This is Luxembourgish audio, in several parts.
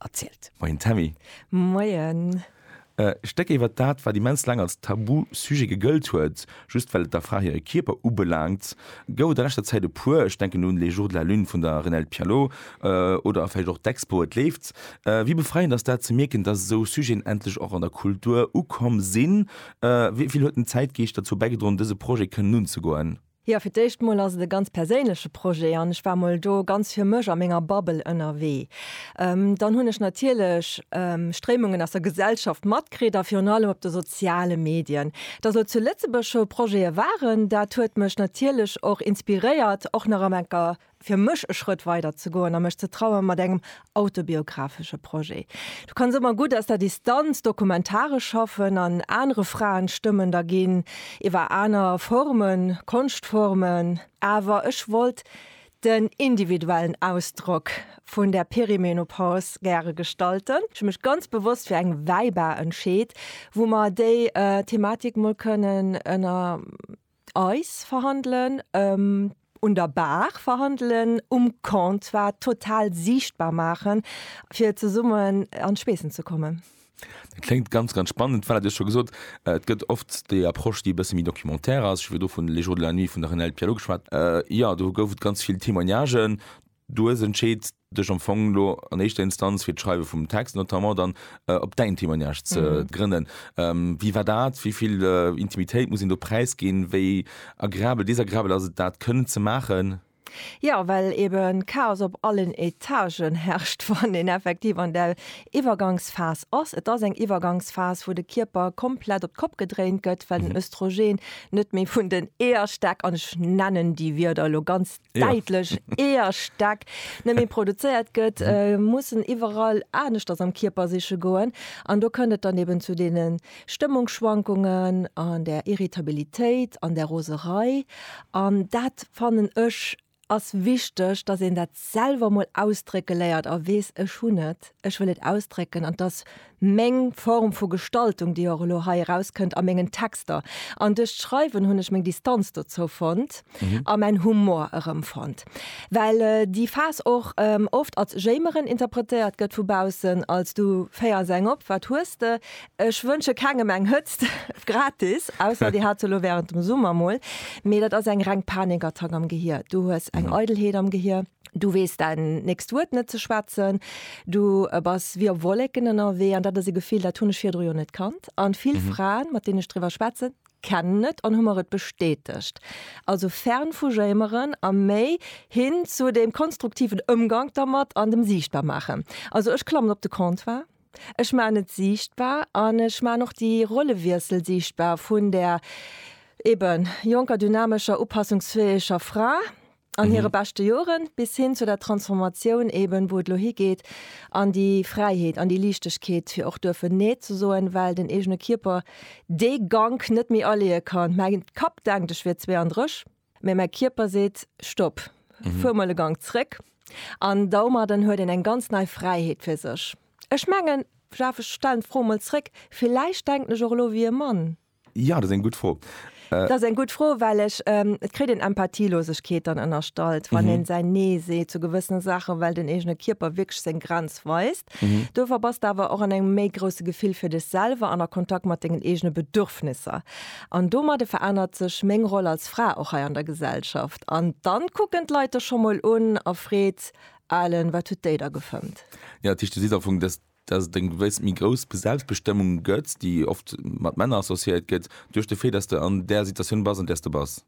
erzielt. Moien Tammy. Moien. E Stéck iwwert dat, wat immens laang als Tabu-Sujet gegëllt huet, just well et der Fra hire Kierper ubelaangt, gouf et a leschter Zäit e puer. Ech denken un Les jours de la lune vun der Renelde Pialot oder vläicht och d'Expo Et leeft. Wéi befreiend ass dat ze mierken, dass esou Sujeten endlech och an der Kultur ukomm sinn? Wéi vill huet den Zäitgeescht derzou bäigedroen, dëse Projet kënnen unzegoen? Jo, fir d'éischt mol ass et e ganz perséinleche Projet an ech war mol do ganz fir mech a menger Bubble ënnerwee. Dann hunn ech natierlech Stréimungen aus der Gesellschaft matkritt a virun allem op de soziale Medien. Dass elo zu Lëtzebuerg scho Projete waren, dat huet mech natierlech och inspiréiert, och nach am enker fir mech e Schrëtt weider ze goen a mech ze traue mat engem autobiographesche Projet. Du kanns ëmmer gutt aus der Distanz dokumentaresch schaffen an anere Fraenstëmmen da ginn, iwwer aner Formen, Konschtformen. Awer ech wollt den individuellen Ausdrock vun der Perimenopause gäre gestalten. Ech hu mech ganz bewosst fir eng Wäibar entscheet, wou mer déi Thematik mol kënnen ënner. Eis verhandelen, un der Bar verhandelen, um Comptoir total siichtbar maachen, fir zesummen an d'Schweessen ze kommen. Dat kléngt ganz, ganz spannend. Voilà, Dir hutt scho gesot, et gëtt oft déi Approche, déi e bësse méi documentaire ass. Ech hu virdu vun Les jours de la nuit vun der Renelde Pierlot geschwat. Jo, do gouf et ganz vill Témoignagen. Du hues entscheet, dech am Fong elo an éischter Instanz fir d'Schreiwe vum Text notamment dann op däin Témoignage ze grënnen. Wéi war dat? Wéi vill Intimitéit muss een do präisginn? Wéi agreabel, desagrabel ass et dat kënnen ze maachen? Jo, well ebe Chaos op allen Etagen herrscht, wann een effektiv an där Iwwergangsphas ass. Et ass eng Iwwergangsphas, wou de Kierper komplett op d'Kopp gedréint gëtt, well den Östrogen net méi vun den Eeërstäck, an ech nennen déi Wierder elo ganz däitlech eeër Stäck net méi produzéiert gëtt, mussen iwwerall aneschters am Kierper siche goen. An do kënnt et dann eben zu deene Stëmmungsschwankungen an der Irritabilitéit an der Roserei. An dat fannen ech ass wichteg, datt een dat selwer mol ausdrécke léiert a weess, ech hunn et, ech wëll et ausdrécken an 't ass meng Form vu Gestaltung, déi och elo hei erauskënnt a mengen Texter. An duerch d'Schreiwen hunn ech meng Distanz dozou fonnt a mäin Humor erëmfonnt. Well déi Phas och oft als Jéimeren interpretéiert gëtt vu baussen, als du féiers eng op, wat hues de? Ech wënsche kengem eng Hëtzt gratis, ausser dir hat se elo wärend dem Summer mol, mee dat ass eng reng Panikattack am Gehier. Du hues eng Eidelheet am Gehier. Du weess däin nächst Wuert net ze schwätzen, du bass wéi op Wolleken ënnerwee an dat ass e Gefill, dat hunn ech virdru jo net kannt. A vill mhm. Fraen, mat deenen ech driwwer schwätzen, kennen et an hu mer et bestätegt. Also fern vu Jéimeren a méi hin zu dem konstruktiven Ëmgang dermat an dem Siichtbar maachen. Also ech klammen op de Comptoir, Ech ma net sichtbar an ech ma noch die Rollewiesel sichtbar vun der eben jonker dynamescher upassungsfäeger Fra an hire beschte Joren, bis hin zu der Transformatioun eben, wou et elo higeet an déi Fräiheet, an déi Liichtegkeet, fir och duerfen Nee ze soen, well den eegene Kierper dee Gank net méi aleeë kann. Mäi Kapp denkt, ech wier 32, mä mäi Kierper seet, Stopp, fuer mol e Gank zréck. An domadden huet een eng ganz nei Fräiheet fir sech. Ech mengen, Jeff, ech stellen d'Fro mol zréck, villäicht denken ech och elo wéi e Mann. Ja, dat ass eng gutt Fro. Dat ass eng gutt Fro, well ech, et kritt een Empathielosegkeet dann ënnerstallt, wann een säin Nee seet zu gewëssene Saachen, well den eegene Kierper wierklech seng Grenz weist. Dofir bass de awer och an engem méi grousse Gefill fir dech selwer an a Kontakt mat dengen eegene Bedürfnisser. An domadde verännert sech meng Roll als Fra och hei an der Gesellschaft. An dann kucken d'Leit dech scho mol un erfreet, Alen, wat huet déi da gefëmmt? Ja, dat heescht, du sees am Fong, dass dass et eng gewëss méi grouss Selbstbestëmmung gëtt, déi oft mat Männer associéiert gëtt, duerch de Fait, dass de an där Situatioun bass, an där s de bass.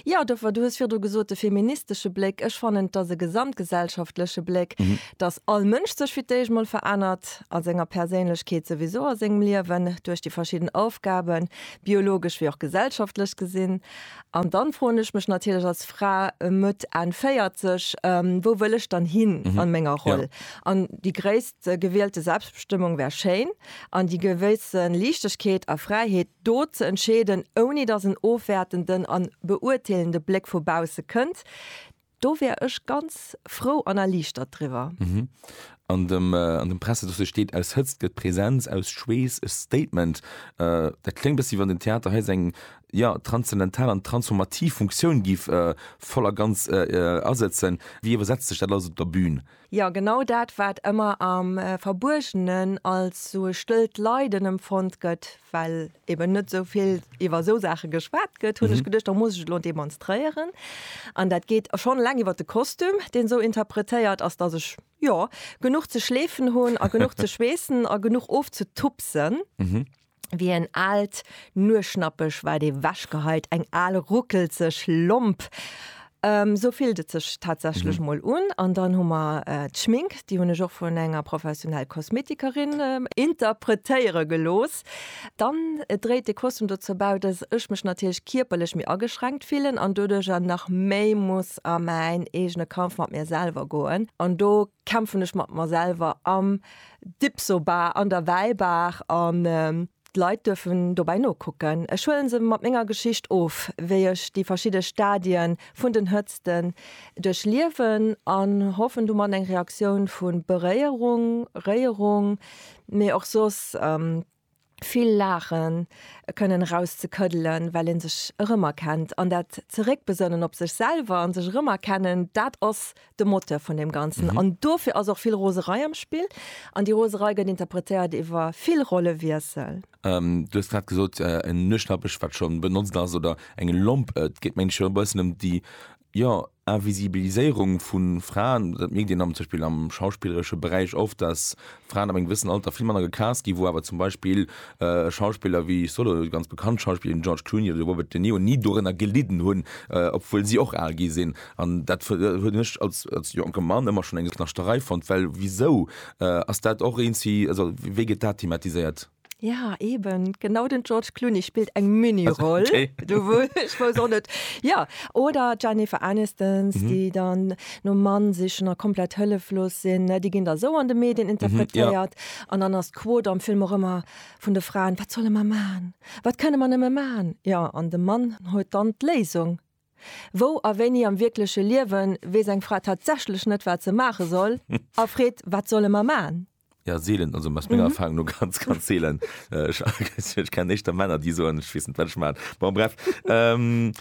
Jo, dofir, du hues virdu gesot, de feministesche Bléck, ech fannen, et ass e gesamtgesellschaftleche Bléck, dass all Mënsch sech fir d'éischt mol verännert a senger Perséinlechkeet, souwisou a sengem Liewen, duerch déi verschidden Aufgaben, biologesch wéi och gesellschaftlech gesinn, An dann froen ech mech natierlech als Fra Mëtt, Enn 40, wou wëll ech dann hin an menger Roll? An déi gréisst gewielte Selbstbestëmmung wär schéin, an déi gewësse Liichtegkeet a Fräiheet, do ze entscheeden, ouni datt en ofwäertenden an beurteelende Bléck vu bausse kënnt, Do wär ech ganz frou an erliichtert driwwer. An dem Pressedossier steet, Aus Hëtzt gëtt Präsenz, aus Schweess e Statement. Dat kléngt e bëssi, wann den Theater hei seng, jo, transzendental an transformativ Funktioun giff voll a ganz asëtzen. Wéi iwwersetzt sech dat alles op der Bün? Jo, genau dat, wat ëmmer am Verbuergenen als sou e stëllt Leiden emfonnt gëtt, well eben net sou vill iwwer sou Saache geschwat gëtt, hunn ech geduecht, da muss ech et elo demonstréieren. An dat geet schonn eleng iwwer de Kostüm, deen sou interpretéiert ass, dass ech, jo, genuch ze schleefen hunn a genuch ze schweessen a genuch ofzetupsen. Wéi en aalt Nueschnappeg war et ee wechgeheit, eng al ruckelzeg Lomp. Esou fillt et sech tatsächlech mol un. An dann hu mer d'Schmink, déi hunn ech och vun enger professionell Kosmetikerin interpretéiere gelooss. Dann dréit de Kostüm dozou bäi, dass ech mech natierlech kierperlech méi ageschränkt fillen an doduerjer nach méi muss a mäin eegene Kampf mat mir selwer goen. An do kämpfen ech mat mer selwer am Dipsobar an der Wäibaach an d'Leit duerfen dobäi nokucken. Ech huelen se mat menger Geschicht of, wéi ech déi verschidde Stadien vun den Hëtzten duerchliewen an hoffen domat eng Reaktioun vu Beréierung, Réierung, mee och soss vill Laachen, e Kënnen eraus ze këddelen, well ee sech erëmerkennt an dat Zeréckbesënnen op sech selwer a sech erëmerkennen, dat ass de Moteur vun deem Ganzen. An dofir ass och vill Roserei am Spill an déi Roserei gëtt interpretéiert iwwer vill Rollewiessel. Du hues grad gesot, en Nuechtnappech, wat scho benotzt ass, oder eng Lomp, et geet mengen ech jo e bëssen ëm déi Jo, Invisibiliséierung vu Fraen, dat mierkt een am zum Beispill am schauspilleresche Beräich oft, dass Fraen ab engem gewëssen Alter vill manner gecast ginn, wou awer zum Beispill Schauspiller wéi, ech soen elo, déi ganz bekannt Schauspiller wéi den George Clooney oder de Robert De Niro ni dorënner gelidden hunn, obwuel si och al gi sinn. An dat hunn ech als jonke Mann ëmmer schonn eng Knaschterei fonnt, well wisou ass dat och eent si, also wéi gëtt dat thematiséiert? Ja eben genau den George Clooney spillt eng Miniroll net Ja oder Jennifer Anistons, mhm. déi dann no Mann sichchen a komplett hëlleflos sinn, Di ginn der sou an de Medien interpretéiert an mhm, ja. dann ass d'Quot am Film och ëmmer vun de Fraen wat solle man man? Wat kënne man ëmme man? Ja an de Mann huet dann d'Léisung. Wou a wéini am wierkleche Liewen weess eng Fra tatsächlech net wat ze maache soll a freet wat solle man man? Ja, seelen, also aus menger mhm. Erfahrung nur ganz, ganz seelen. Äh, ich, ich kenne echt Männer, die so, ich weiß nicht, was ich meine. Bon, bref. Ähm,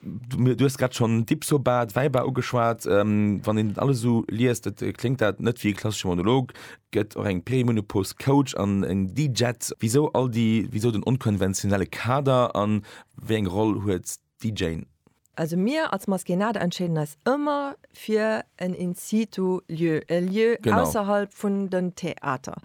du, du hast gerade schon Dipsobat, Weiber ugeschwart, ähm, wann den alles so liest, das äh, klingt das nicht wie ein klassischer Monolog, gibt auch ein Playmonopos Coach an ein DJ. Wieso all die, wieso den unkonventionelle Kader an wie eine Rolle hat Déi Jane. Also mir als Maskénade entscheeden eis ëmmer fir en In-situ Lieu, e Lieu ausserhalb vun den Theater.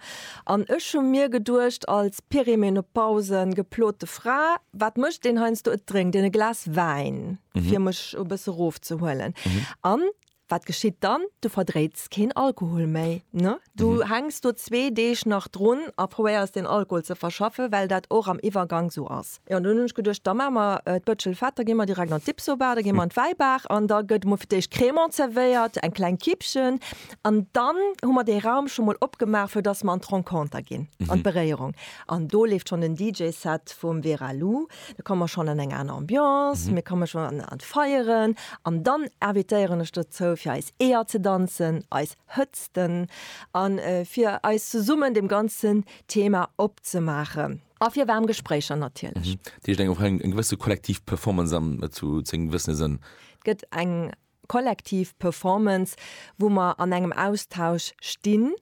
An ech hu mir geduecht als perimenopause geplote Fra, wat mécht deen heiansdo, et drénkt een e Glas Wäin fir mech e bësse rofzehuelen an Wat geschitt dann? Du verdréits keen Alkohol méi, ne? Du hänks do zwee Deeg nach drun a probéiers deen Alkohol ze verschaffen, well dat och am Iwwergank sou ass. Jo, an dunn hunn ech geduecht, da maache mer d'Bëtschel fett, da gi mer direkt an d'Dipsobar, da gi mer an d'Wäibaach an da gëtt emol fir d'éischt Crémant zerwéiert, eng kleng Kippchen an dann hu mer dee Raum scho mol opgemaach, fir dass mer an d'Renconter ginn, an d'Beréierung. An do leeft schonn den DJ-Set vum Vera Lou. Da komme mer schonn an eng aner Ambiance, mir komme schonn an an d'Feieren an dann invitéieren ech dozou fir eis Eeër ze danzen, eis Hëtzten a fir eis zesummen deem ganzen Thema opzemaachen. A fir waarm Gespréicher natierlech. Dat heescht eng och eng gewësse kollektiv Performance am zu zu engem gewëssene Sënn. Et gëtt eng kollektiv Performance, wou mer an engem Austausch stinn.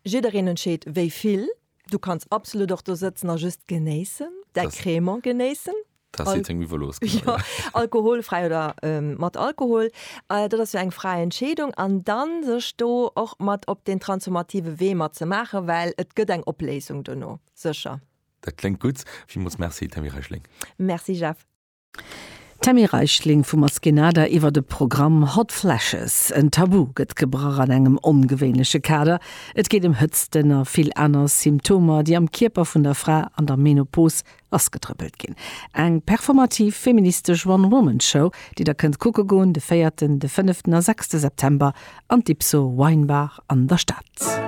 Jiddereen entscheet wéi vill. Du kanns absolut och do sëtzen a just genéissen, däi Das- Crémant genéissen. Da Al- si seng Miwe los. Ja, alkoholfräi oder ähm, mat Alkohol. Äh, dat ass jo eng fräi Entscheedung. An dann sech do och mat op deen transformative Wee mat ze maachen, well et gëtt eng Opléisung dono, sécher. Dat kléngt gutt. Villmools Merci, Tammy Reichling. Merci Jeff. D'Tammy Reichling vu Maskenada iwwert e Programm Hot Flashes. En Tabu gëtt gebrach an engem ongewéinleche Kader. Et geet ëm Hëtzten a vill aner Symptomer, déi am Kierper vun der Fra an der Menopos lassgetrëppelt ginn. Eng performativ feministesch One-Woman-Show, déi der kënnt kucke goen de véierten, de fënneften a sechste September an d'Ipso Wine Bar an der Stad.